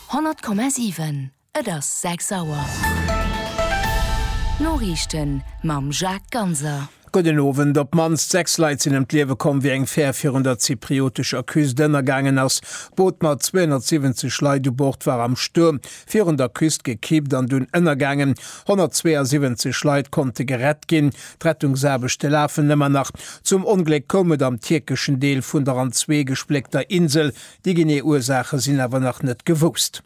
100,7 Et ass 6 Auer. D'Noriichten mam Jacques Ganser. Gudden Owend. Op d'mannst 6 Leit sinn ëm d'Liewe komm, wéi eng Fär virun der zypriotescher Küst ënnergaangen ass. D'Boot mat 270 Leit u Bord war am Stuerm virun der Küst gekippt an dunn ënnergaangen. 172 Leit konnte gerett ginn. D'Rettungsaarbechte lafen ëmmer nach. Zum Ongléck koum et am tierkeschen Deel vun der an zwee gespléckter Insel Déi genee Ursaache sinn awer nach net gewousst.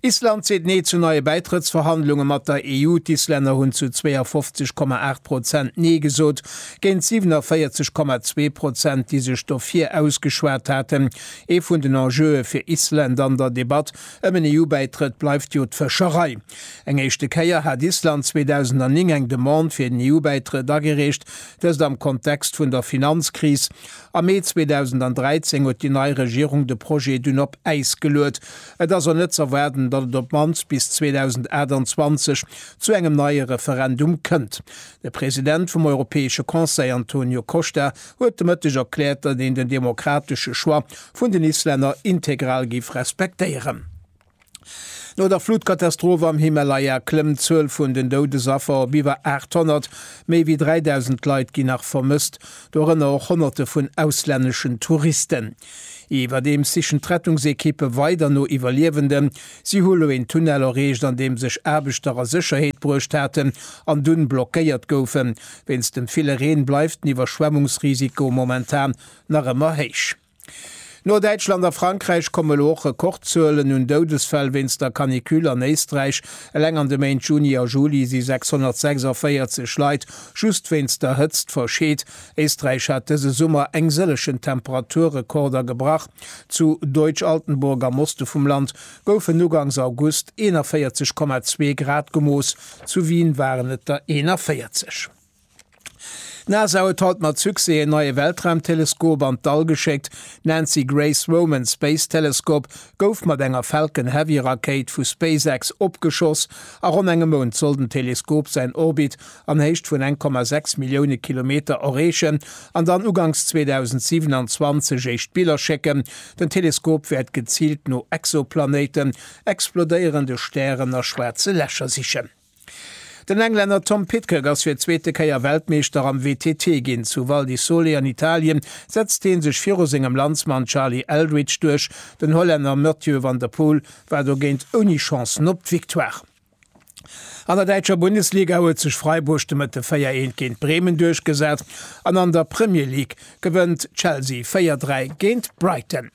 Island seet Nee zu neie Bäitrëttsverhandlunge mat der EU. D'Islänner hunn zu 52, 8 Prozent Nee gesot, géint 47, 2 Prozent, déi sech dofir ausgeschwat haten. Ee vun den Enjeue fir Island an der Debatt ëm en EU-Bäitrëtt bleift jo d'Fëscherei. Eng éischte Kéier hat Island 2009 eng Demande fir den EU-Bäitrëtt agereecht, dëst am Kontext vun der Finanzkris. Am Mee 2013 huet déi nei Regierung de Projet dunn op Äis geluet. Et ass och net z'erwaarden, datt et op d'mannst bis 2028 zu engem neie Referendum kënnt. De President vum Europäesche Conseil Antonio Costa huet de Mëtteg erkläert, datt een den demokratesche Choix vun den Islänner integral géif respektéieren. No der Flutkatastroph am Himalaya klëmmt d'Zuel vun den Doudesaffer op iwwer 800. Méi wéi 3.000 Leit ginn nach vermësst, dorënner och Honnerte vun auslänneschen Touristen. Iwwerdeems sichen d'Rettungsekippe weider no Iwwerliewenden. Si hu lo een Tunnel erreecht, an deem sech Aarbechter a Sécherheet bruecht haten an dunn blockéiert goufen. Wéinst dem ville Reen bleift den Iwwerschwemmungsrisiko momentan nach ëmmer héich. No Däitschland a Frankräich komme lo och Rekordzuelen un Doudesfäll wéinst der Canicule an Éisträich. Eleng an de Méint Juni a Juli si 646 Leit just wéinst der Hëtzt verscheet. Éisträich hat dëse Summer eng sëllegen Temperaturrekorder gebrach. Zu Deutsch-Altenburg am Oste vum Land goufen ugangs August 41,2 Grad gemooss, zu Wien waren et der 41. D'NASA huet haut mat Succès en neie Weltraumteleskop an d'All geschéckt. D'Nancy Grace Roman Space Telescope gouf mat enger Falcon Heavy Rakéit vu SpaceX opgeschoss. A ronn engem Mount soll den Teleskop säin Orbit an Héicht vun 1,6 Millioune Kilometer erreechen an dann uganks 2027 éischt Biller schécken. Den Teleskop wäert geziilt no Exoplanéiten, explodéierende Stären a schwaarze Lächer sichen. Den Englänner Tom Pidcock ass fir d'zweete Kéier Weltmeeschter am WTT ginn. Zu Val di Sole an Italien setzt hie sech viru sengem Landsmann Charlie Eldridge duerch. Den Hollänner Mathieu van der Poel war dogéint ouni Chancen op d'Victoire. An der däitscher Bundesliga huet sech Freiburg de Mëtte 4 Eent géint Bremen duerchgesat an an der Premier League gewënnt Chelsea 4 3 géint Brighton.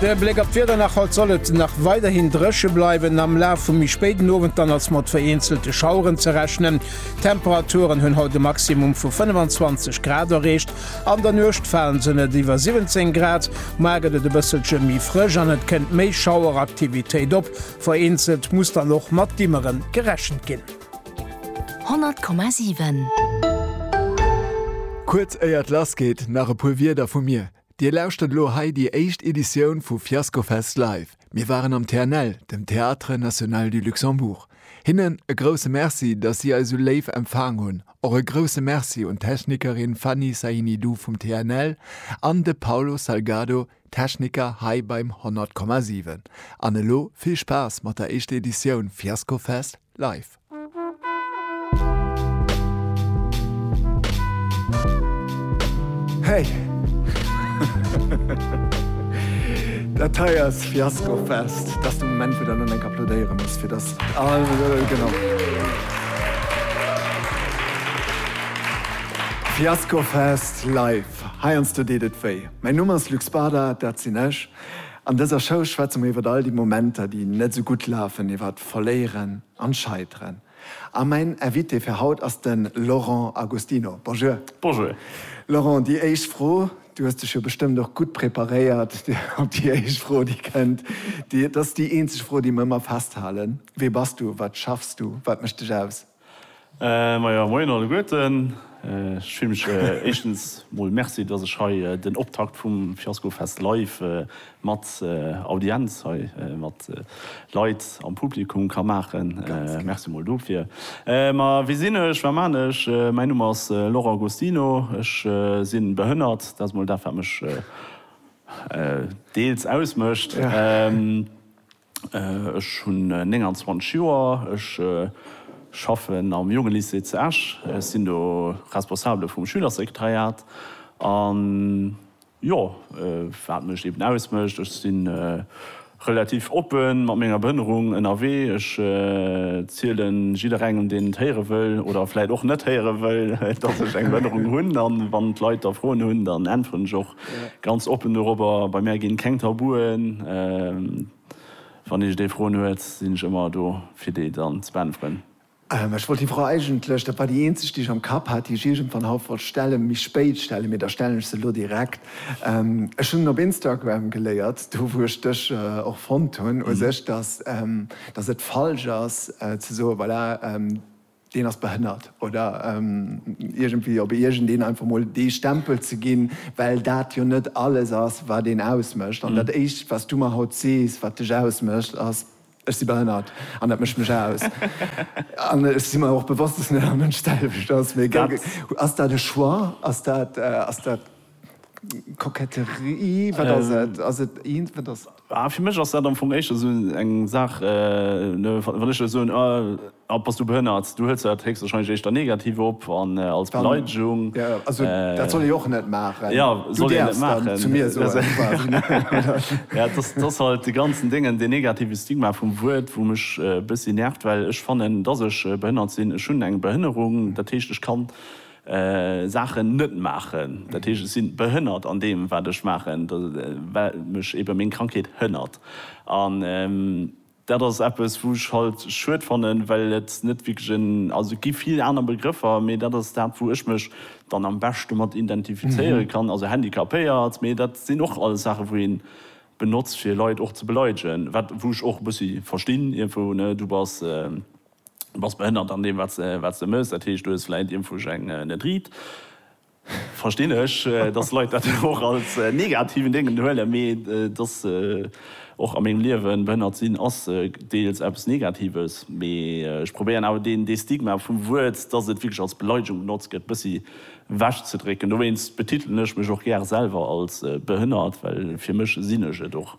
De Bléck op d'Wieder nach, Haut soll et nach weiderhin dréche bleiwen, am Laf vum méi spéiden Owend dann ass mat vereenzelte Schaueren ze rechnen. D'Temperaturen hunn haut e Maximum vu 25 Grad erreecht, an der Nuecht falen se net iwwer 17 Grad. Moar gëtt et e bësselche méi frësch an et kënnt méi Schaueraktivitéit op, vereenzelt muss dann och mat Dimmere gerechent ginn. 100,7. Kuerz éier et lass geet, nach e puer Wierder vu mir. Dir lauschtert elo hei déi éischt Editioun vu Fiascofest Live. Mir waren am TNL, dem Théâtre National du Luxembourg. Hinnen e grousse Merci, dass si eis esou léif empfaang hunn. Och e grousse Merci un d'Technikerin Fanny Sahinidou vum TNL an de Paulo Salgado, Techniker hei beim 100,7. An elo vill Spaass mat der éischter Editioun Fiascofest Live! Hey! Dat hei ass Fiasko Fest. Dat ass de Moment, wou der elo enk applaudéiere muss, fir dass all. Genau. Fiasko Fest live. Heiansdo deet et wéi. Mäin Numm ass Luc Spada, dat sinn ech. An dëser Show schwätze mer iwwer all déi Momenter, déi net esou gutt lafen, iwwer. Verléieren an Scheiteren. A mäin Invité fir haut ass den Laurent Agostino. Bonjour. Bonjour. Laurent, déi éischt Fro, du hues dech jo bestëmmt och gutt preparéiert op déi éischt Fro déi kënnt. Dat ass déi eenzeg Fro déi mer ëmmer festhalen. Wee bass du? Wat schaffs du? Wat mécht dech aus? Majo, moien alleguerten. Ech fillen mech éischtens mol Merci, dass ech hei den Optakt vum Fiasco Fest live mat Audienz hei, mat Leit am Publikum ka maachen. Merci mol dofir. Ma wie sinn ech, wat man ech? Mäin Numm ass Laurent Agostino. Ech sinn behënnert, dat ass mol dat wat mech deels ausmécht. Ech hunn 29 Joer, ech schaffen am Jongelycée zu Esch, ech sinn do Responsabele vum Schülersekretariat. A jo, wat mech eben ausmécht, ech si relativ oppe mat menger Behinnerung ënnerwee, ech ziele jidderengem, deen et héiere wëll oder vläicht och net héiere wëll, dass ech eng Behinnerung hunn. A wann d'Leit da Froen hunn, dann äntweren ech och Ganz oppen dorobber, bei mär ginn keng Tabuen, wann iech dee Froen huet, sinn ech ëmmer do fir déi dann ze beäntweren. Ech wollt déi Fro eigentlech, dat war déi eenzeg déi ech am Kapp hat, déi ech iergendwann haut wollt stellen, méi spéit stellen, mee da stellen ech se elo direkt. Ech hunn op Instagram geléiert, do wou ech dech och fonnt hunn u sech, dass dass et falsch ass ze soen, voilà, deen ass behënnert oder iergendwéi op iergendeen einfach mol dee Stempel ze ginn, well dat jo net alles ass, wat een ausmécht. An dat éischt, wat s du mer haut sees, wat dech ausmécht, ass, Ech si behënnert an dat mécht mech aus. An ech si mer och bewosst, dass net all Mënsch d'selwecht ass. Mee ass dat e Choix? Ass dat. Koketterie, wat ass et? Ass et eent, wat ass. Ah, fir mech ass dat am Fong éischter esou eng Saach, wann ech der soen, ah, bass du behënnert, du huels dat héchstwahrscheinlech éischter negativ op an als Beleidegung. Ja, also dat soll ee och net maachen. Ja, soll een net maachen. Du däerfs dann zu mir soen, quasi. Ja, et ass, et ass halt dee ganzen Déngen, deen negative Stigma vum Wuert, wou mech e bëssi nervt, well ech fannen, dass ech behënnert sinn. Ech hunn eng Behënnerung, dat heescht, ech kann Saachen net maachen, dat heescht ech sinn behënnert an deem wat ech maachen, well mech ebe meng Krankheet hënnert. An dat ass eppes wou ech halt schued fannen, well et net wierklech en, also et gi vill aner Begrëffer, mee dat ass dat wou ech mech dann am beschte mat identifizéiere kann, also handicapéiert, mee dat sinn och alles Saache wou een benotzt fir Leit och ze beleidegen, wat wou ech och e bëssi verstinn iergendwou, ne, du bass. Du bass behënnert an deem wat se mëss, dat heescht du hues vläit Impfugäng, net riit. Verstinn ech, dass Leit dat och als negativen Déngen huelen, mee dass och a mengem Liewen behënnert sinn ass deels eppes negatives. Mee ech probéieren awer deen dee Stigma vum Wuert, dass et wierklech als Beleidegung benotzt gëtt, bëssi ewech ze drécken. Dowéinst betitelen ech mech och gär selwer als behënnert, well fir mech sinn ech et och.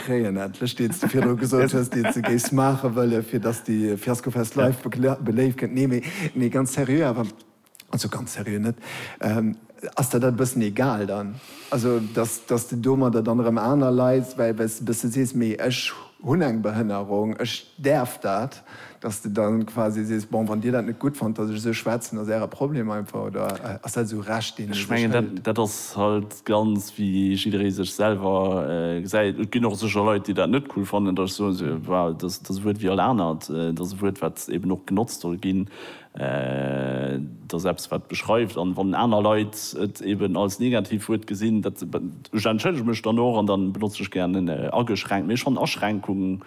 Kréien endlech, deens de virdru gesot hues, deens de géifs maache wëllen, fir datt déi Fiaskofest live beléift gëtt. Nee, mee, mee ganz seriö awer, also ganz seriö net, ass der dat e bëssen egal dann? Also datt, datt de domadder dann erëm aner Leit, well, well s de e bësse sees, mee ech hunn eng Behënnerung, ech däerf dat. Dass de da quasi sees, bon, wann Dir dat net gutt fannt, dass ech esou schwätzen, ass Äre Problem einfach, oder ass dat esou Recht, deen ee sech hëlt? Dat ass halt ganz wéi jidderee sech selwer gesäit. Et ginn och sécher Leit, déi dat net cool fannen, dass ech soen, se war dass dass e Wuert wéi all anert, et ass e Wuert, wat eben och genotzt soll ginn, et ass eppes, wat beschreift. An wann aner Leit et eben als Negativwuert gesinn, dat ech entschëllege mech dann och an da benotze ech gären ageschränkt. Mee ech fannen Aschränkung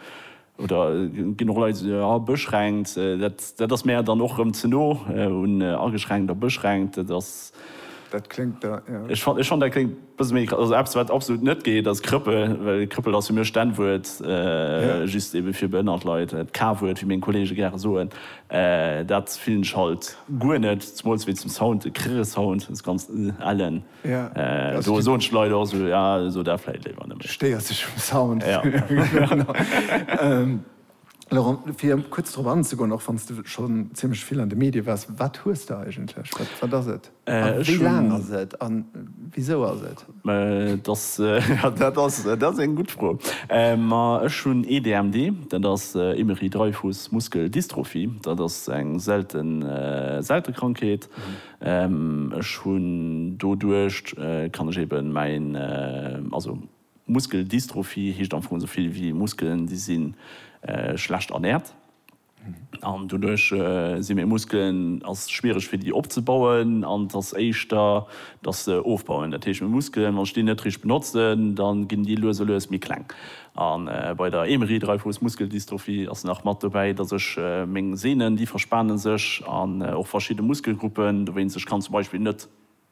Oder ginn och Leit, déi soen, ah, beschränkt, dat ass mär dann och erëm ze no un ageschränkt a beschränkt. Dat ass. Dat kléngt da, jo. Ech fannen, dat kléngt e bësse méi, also eppes, wat absolut net geet, ass Krëppel. Well Krëppel ass fir mech d'N-Wuert, just ebe fir behënnert Leit. D'K-Wuert, wéi meng Kollege gäre soen, dat fillen ech halt guer net, zemools wéi zum Sound, de Krrr-Sound, dës ganz ëllen. Do soen d'Leit och esou, ja, so dat vläit léiwer net méi. Du stéiers dech um Sound. Laurent, fir kuerz drop anzegoen, och wann s de schonn zimmlech vill an de Medie waars, wat hues de eigentlech? Wat ass et? A wéi laang ass et? A wisou ass et? Dat ass eng gutt Fro. Ma ech hunn ee DMD, dat ass Émery-Dreifuss-Muskel-Dystrophie. Dat ass eng selte Krankheet. Ech hunn doduercht kann ech eben mäin, also Muskeldystrophie heescht am Fong esou vill wéi Muskelen déi si schlecht ernährt an doduerch si meng Muskelen, ass schwiereg fir déi opzebauen an et ass éischter dass se ofbauen. Dat heescht meng Muskelen, wann ech déi net richteg benotzen, da ginn déi lues a lues méi kleng A bei der Emery-Dreifuss-Muskeldystrophie ass nach mat dobäi, dass ech meng Sehnen, déi verspane sech, an och verschidde Muskelgruppen, dowéinst ech kann zum Beispill net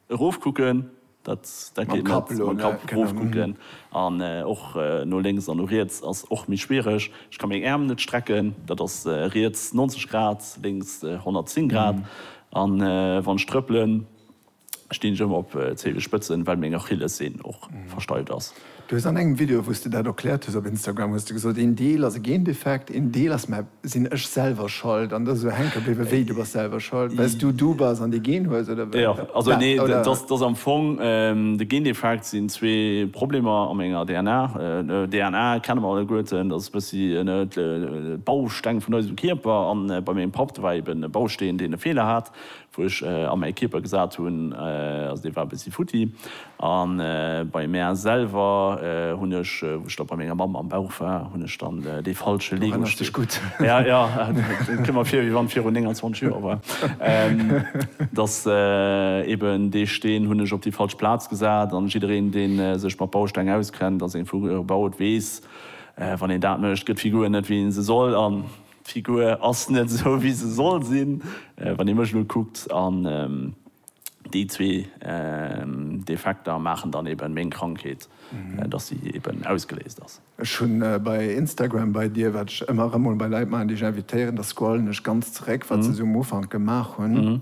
erofkucken, dat geet net, mam Kapp erofkucken, an och no lénks an no riets ass och méi schwiereg. Ech ka meng Äerm net strecken, dat ass riets 90 Grad, lénks 110 Grad, a wann ech trëppelen, Stinn ech ëmmer op Zehenspëtzen, well meng Achillessehn och versteift ass. Du hues an engem Video wous de dat erkläert hues op Instagram hues de gesot, een Deel ass e Gendefekt, een Deel ass, mä sinn ech selwer schold an dass ech esou hänke bliwwe wéi, du bass selwer schold wells du du bass an dee Gen hues oder wat? Jo, also nee, dat ass am Fong de Gendefekt sinn zwee Problemer a menger DNA. DNA kenne mer alleguerten, dat ass e bëssi de Bausteng vun eisem Kierper an bei mengem Papp, do war eben e Bausteen deen e Feeler hat, wou ech a mäi Kierper gesat hunn, also dee war e bëssi futti, a bei mär selwer hunn ech, wou ech da bei menger Mamm am Bauch war, hunn ech dann dee falsche Lego-Steen. Du erënners dech gutt. Ja, ja, et kënnt mer vir, wéi wann virun 29 Joer war, dass eben dee Steen hunn ech op déi falsch Plaz gesat. An jiddereen, dee sech mat Bausteng auskennt a seng Figur baut, weess, wann een dat mécht, gëtt d'Figur net, wéi ee se soll. D'Figur ass net esou wéi se soll sinn, wann ee mech elo kuckt, an déi zwee Defekter maachen dann eben meng Krankheet, dass si eben ausgeléist ass. Ech hunn bei Instagram bei dir, wat ech ëmmer erëm mol bei Leit maachen, déi ech invitéieren, da scrollen ech ganz zeréck, wat se esou um Ufank gemaach hunn.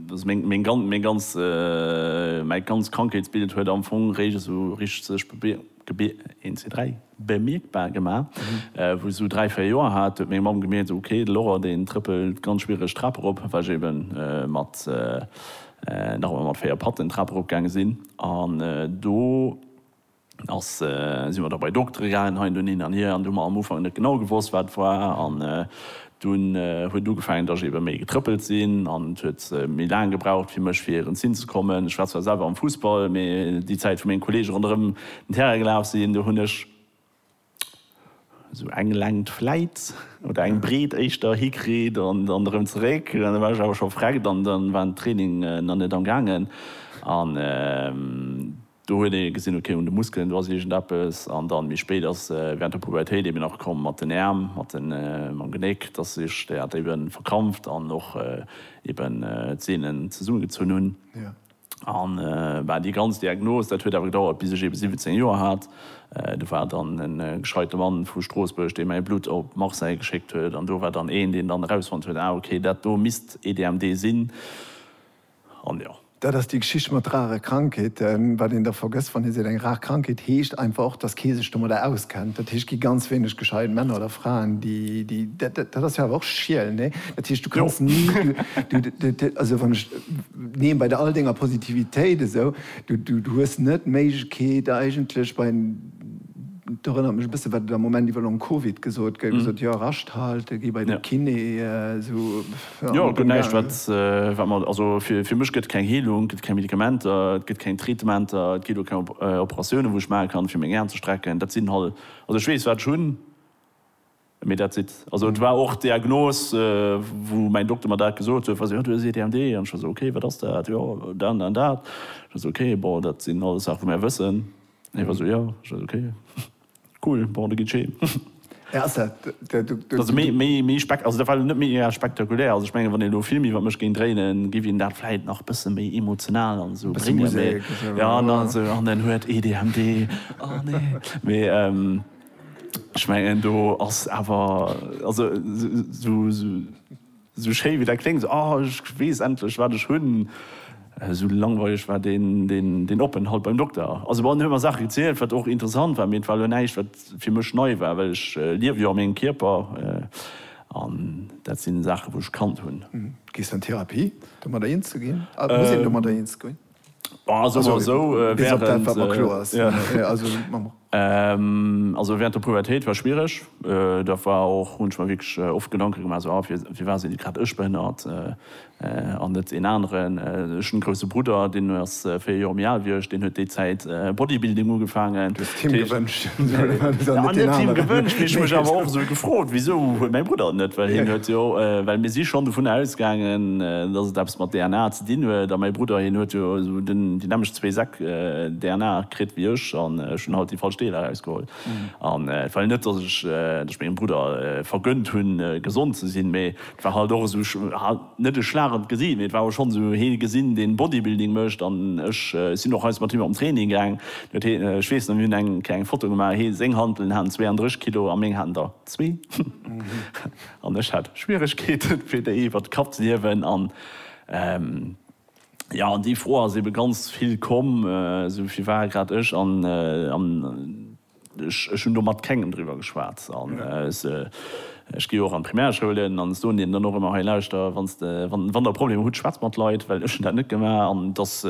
Meng ganz Krankheetsbild huet am Fong réischt esou richteg sech bemierkbar gemaach. Wou ech esou dräi, véier Joer hat, huet meng Mamm gemierkt, Ok, de Laurent, deen trëppelt ganz schwiereg d'Trap erop, well ech eben mat, nach ëmmer mat véier Patten d'Trap erop gaange sinn. An do. Da si mer da bei Doktere gaangen hei an do, hin an hier, an do hu mer am Ufank net genau gewosst, wat war. An dunn huet ugefaangen, datt ech ebe méi getrëppelt sinn an et huet méi laang gebraucht fir mech fir erëms hinzekommen. Ech war zwar selwer am Fussball, mee déi Zäit, wou meng Kolleege ronderëm den Terrain gelaf sinn, do hunn ech. Esou eng Längt vläit, oder eng Breet éischter, hikritt an dann erëm zeréck. An da war ech awer scho vreckt an da war den Training nach net am gaangen. An do huet ee gesinn, ok, un de Muskelen, do ass iergendeppes. An dann méi spéit ass während der Pubertéit eben nach komm mat den Äerm, mat mam Genéck, dass ech dat eben verkrampft an och eben d'Seenen zesummegezunn hunn. A bah, déi ganz Diagnos, dat huet awer gedauert, bis ech eben 17 Joer hat. Do war dann e gescheite Mann vu Stroossbuerg, dee mäi Blutt op Marseille geschéckt huet. An do war dann een, deen dann erausfonnt huet, Ah, okay, dat do misst EDMD sinn. An jo. Dat ass déi Geschicht mat rare Krankheeten. Wat een da vergësst, wann ee seet, eng rar Krankheet, heescht einfach och, dass kee sech domadder auskennt. Dat heescht, et gi ganz wéineg gescheit Männer oder Fraen, déi, déi, dat ass jo awer och schiel, nee? Dat heescht, du kanns ni, du, du, also wann ech. Neen, bei all denger Positivitéit esou, du hues net d'Méiglechkeet eigentlech bei, et erënnert mech e bësse wat et am Moment iwwer Long Covid gesot gëtt, gesot, jo, Rascht halte, gi bei de Kiné, esou, jo. Jo, et gëtt näischt wat wat mer, also fir mech gëtt et keng Heelung, gëtt et keng Medikamenter, et gëtt keng Traitementer, et ginn och keng Operatioune wou ech maache kann fir meng Aen ze strecken, dat sinn halt, also ech weess wat ech hunn. Mee dat sidd. Also et war och d'Diagnos, wou mäin Dokter mer dat gesot huet, wou se, jo du hues EDMD. An ech war esou, okay, wat ass dat? Jo, dat an dat an dat. Ech war esou, okay, bon, dat sinn alles Saache wou mär wëssen. An hie war esou, jo. Ech war esou, okay, cool, bon, da gitt scheen. Hä, ass dat de, de, de. Also méi, méi, méi spek, also dat war elo net méi eher spektakulär. Also ech mengen, wann een elo Film iwwer mech géing dréinen, géif een dat vläit nach bësse méi emotional an esou bréngen. Musek. Mee, jo, an dann esou, an en huet EDMD. Oh nee. Mee, Ech mengen do ass awer, also sou schéi wéi dat kléngt, ah ech weess endlech wat ech hunn, sou langweileg war deen Openthalt beim Dokter. Also bon, en huet mer Saache gezielt, wat och interessant war, mee et war elo näischt wat fir mech nei war, well ech liewe jo a mengem Kierper an dat sinn Saache wou ech kannt hunn. Gees du an Therapie, domadder eens ze ginn? Muss een domadder eens goen? Bon, soe mer esou, wärend der Pubertéit war schwiereg. Dat war och, hunn ech mer wierklech oft Gedanke gemaach, esou, ah, firwat sinn grad ech behënnert an net een aneren? Ech hunn e grousse Brudder, deen ass véier Joer méi al wéi ech, deen huet déi Zäit Bodybuilding ugefaangen. Du hues et him gewënscht? Net him gewënscht, mee ech hu mech awer och esou gefrot, wisou huet mäi Brudder et net? Well hien huet jo, well mir si schonn dovunner ausgaangen, dass et eppes mat DNA. Deen huet, a mäi Brudder, hien huet jo esou déi nämmlecht zwee Säck DNA kritt wéi ech, an ech hunn halt déi falsch Deeler erausgeholl. An et war jo net, datt ech mengem Brudder vergënnt hunn, gesond ze sinn, mee et war halt och esou, net e Schlag an d'Gesicht, mee et war schonn esou, hie gesinn, deen Bodybuilding mécht, an ech sinn och eis mat him an Training gaang. Ech weess nach, mir hunn eng kleng Foto gemaach, hie seng Hanteln haten 32 Kilo a meng haten der. Zwee. An ech hat Schwieregkeeten, fir déi iwwert d'Kap ze hiewen. An, jo, déi Fro ass eebe ganz vill komm, esou fir war grad ech. An ech hunn do mat kengem driwwer geschwat. An ech gi jo och an d'Primärschoulen an soen deenen dann och ëmmer, Hei, lauschter, wann Der Problemer hutt, schwätzt mat Leit, well ech hunn dat net gemaach. An et ass.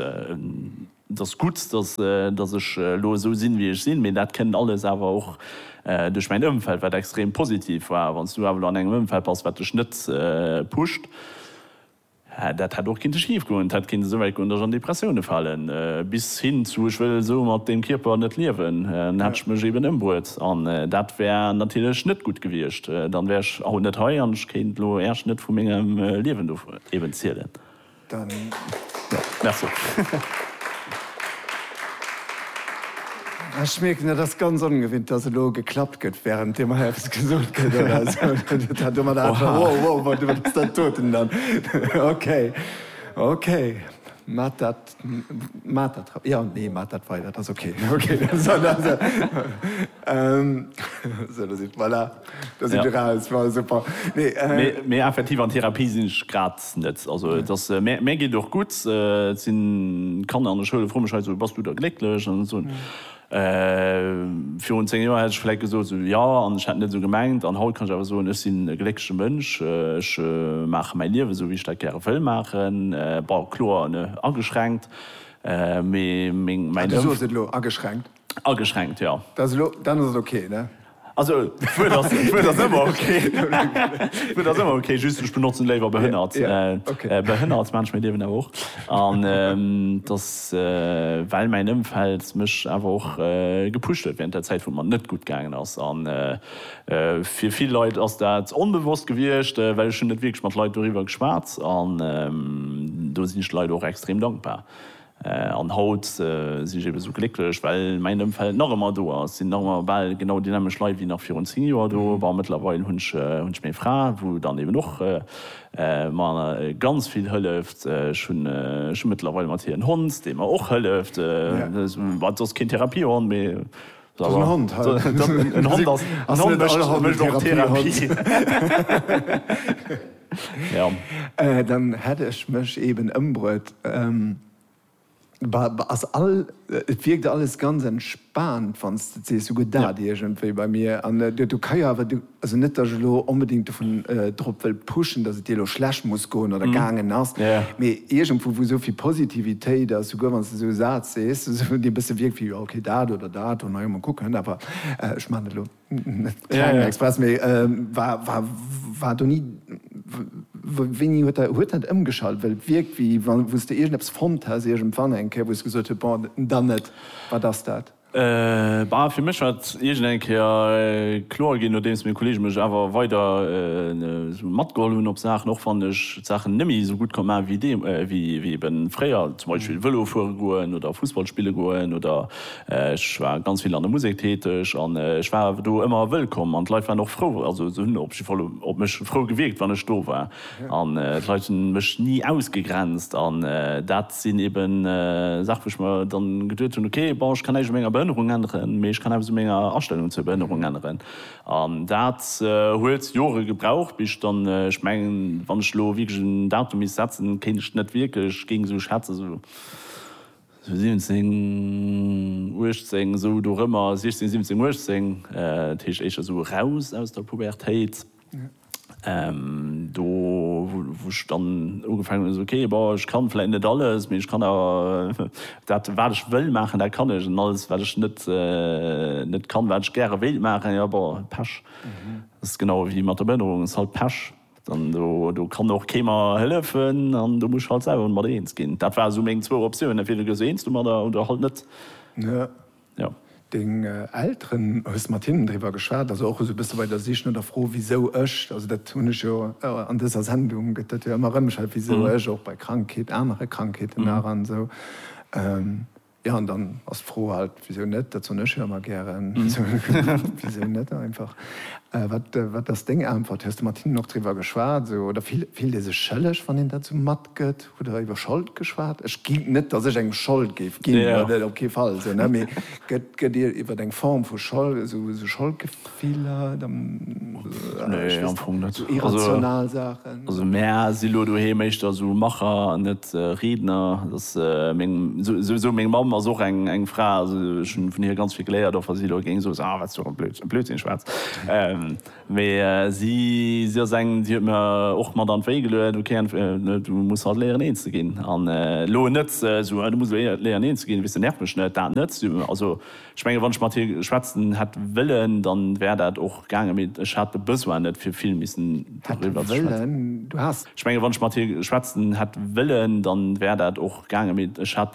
Et ass gutt, datt ech elo esou sinn, wéi ech sinn, mee dat kënnt alles awer och duerch mäin Ëmfeld, wat extrem positiv war. Wann s du awer elo an engem Ëmfeld bass, wat dech net pusht, dat hätt och kinnte schif goen. Et hätt kinnte souwäit goen, datt ech an Depressioune falen, bis hin zu, ech wëll esou mat deem Kierper net liewen. Dann hätt ech mech eben ëmbruet an dat wär natierlech net gutt gewiescht. Dann wär ech haut net hei an ech kéint elo Äerch net vu mengem Liewen do eben zielen. Ech mierken, et ass ganz ongewinnt, datt elo geklappt gëtt, wärend deem hei eppes gesot gëtt oder esou. net. Also et ass mär mär geet och gutt, et sinn Kanner an der Schoul, froe mech hei esou, bass du da glécklech an esou. Virun 10 Joer hätt ech vläit gesot esou, jo an ech hätt net esou gemengt an haut kann ech awer soen, ech sinn e gléckleche Mënsch, ech maache mäi Liewen esou wéi ech dat gäre wëll maachen. Bon kloer, ne, ageschränkt, mee meng, mäin Ëmf. Du soos et elo, ageschränkt. Ageschränkt, jo. Dat ass elo, dann ass et ok, ne? Also, d'Wuert ass, d'Wuert ass ëmmer ok. D'Wuert ass ëmmer ok, just ech benotzen léiwer behënnert. Ok. Behënnert Mensch, mir liewen awer och. An et ass, well mäin Ëmfeld mech awer och gepusht huet während der Zäit, wou et mer net gutt gaangen ass. A fir vill Leit ass dat onbewosst gewiescht, well ech hunn net wierklech mat Leit doriwwer geschwat. An do sinn ech de Leit och extrem dankbar, An haut sinn ech eben esou glécklech, well mäin Ëmfeld nach ëmmer do ass. Et sinn nach ëmmer bal genau déi nämmeg Leit wéi nach virun 10 Joer do. Bon, mëttlerweil hunn ech meng Fra, wou dann eben och mer ganz vill hëlleft. Ech hunn mëttlerweil mat hir en Hond, dee mer och hëlleft, wat soss keen Therapiehond, mee. Dat ass en Hond. En Hond ass, en Hond mécht och, mécht och Therapie. Ja. Dann hätt ech mech eben ëmbruet. Bah, ass all, et wierkt alles ganz entspaant, wann s de et sees. Sou gëtt dat iergendwéi bei mir. An du, du ka jo awer, du. Also net, datt ech elo onbedéngt dovun, drop wëll pushen, datt et dir elo schlecht muss goen oder gaangen ass, mee iergendwou, wou esou vill Positivitéit ass, souguer wann s de esou e Saz sees, esou dee e bësse wierkt wéi, jo, okay, dat oder dat, oh, na jo, mol kucken, awer, ech maachen dat elo net kleng express, mee war, war, war do ni, wéini huet dat, huet dat ëmgeschalt? Well et wierkt, wéi wa wou s de iergendeppes fonnt häss iergendwann eng Kéier, wou s de gesot hues, bon, dann net, wat ass dat? Bah, fir mech war et iergend eng Kéier kloer ginn, nodeems meng Kolleege mech awer weider esou matgeholl hunn op Saachen, och wann ech d'Saachen net méi esou gutt ka maachen, wéi ebe fréier, zum Beispill Vëlo fuere goen oder Fussball spille goen, oder ech war ganz vill an der Musek täteg an ech war awer do ëmmer wëllkomm an d'Leit waren och frou, also se hunn op jidde Fall op mech frou gewierkt, wann ech do war. An d'Leit hu mech ni ausgegrenzt. An dat sinn eben Saache wou ech mer dann geduet hunn, ok, bon, ech kann näischt u menger Behënnerung änneren, mee ech kann eppes u menger Astellung zur Behënnerung änneren. An dat huet Jore gebraucht, bis ech dann, ech mengen, wann ech elo wierklech en Datum misst setzen, kéint ech net wierklech, géing esou schätzen, esou 17, 18, esou dorëmmer, 16, 17, 18, dat heescht éischter esou eraus aus der Pubertéit. Do wou ech dann ugefaangen hunn, ok bon ech kann vläit net alles, mee ech kann awer dat wat ech wëll maachen, dat kann ech, an alles wat ech net net kann, wat ech gäre wéilt maachen, jo bon Pech. Dat ass genau ewéi mat der Behënnerung, ass halt Pech. Dann do kann och kee mer hëllefen an do muss ech halt selwer mat eens ginn. Dat ware sou meng zwou Optiounen, entweder gees du eens domadder oder halt net. jo. Deng Elteren, hues de mat hinnen driwwer geschwat, also och esou e bësse bei der Sich no der Fro wisou ech, also dat hunn ech jo an dëser Sendung gëtt dat jo ëmmer erëm erschwätzt, wisou ech och bei Krankheet, anere Krankheeten nach an esou, jo an dann ass d'Fro halt, wisou net, dat soen ech jo ëmmer gären, wisou net einfach. Wat wat ass deng Äntwert? Hues de mat hinnen och driwwer geschwat esou oder fillt ee sech schëlleg wann een dat esou matgëtt? Hutt der iwwer Schold geschwat? Ech ginn, net datt ech engem Schold géif ginn, dat op kee Fall, esou, ne, mee gëtt, gëtt Dir iwwer eng Form vu Schold, esou, esou Scholdgefiller, dann, nee, ech weess net, esou irrational Saachen? Also mär si lo doheem éischter esou Macher an net Riedner. Et ass meng, esou, esou, meng Mamm ass och eng, eng Fra, also ech hunn vun hir ganz vill geléiert, och wa si elo géing soen, ah, wat s du fir e Blödsinn schwätz. Mee si ass eng, déi huet mir och mat an d'Wéi geluet, ok Anne, du muss halt léieren een ze ginn. An elo net esou, du muss léieren een ze ginn, weess de, nerv mech net, dat net. Also ech menge wann ech mat hir schwätzen hätt wëllen, dann wär dat och gaangen, mee ech hat de Besoin net fir vill missen doriwwer ze schwätzen. Ech menge wann ech mat hir schwätzen hätt wëllen, dann wär dat och gaangen, mee ech hat de.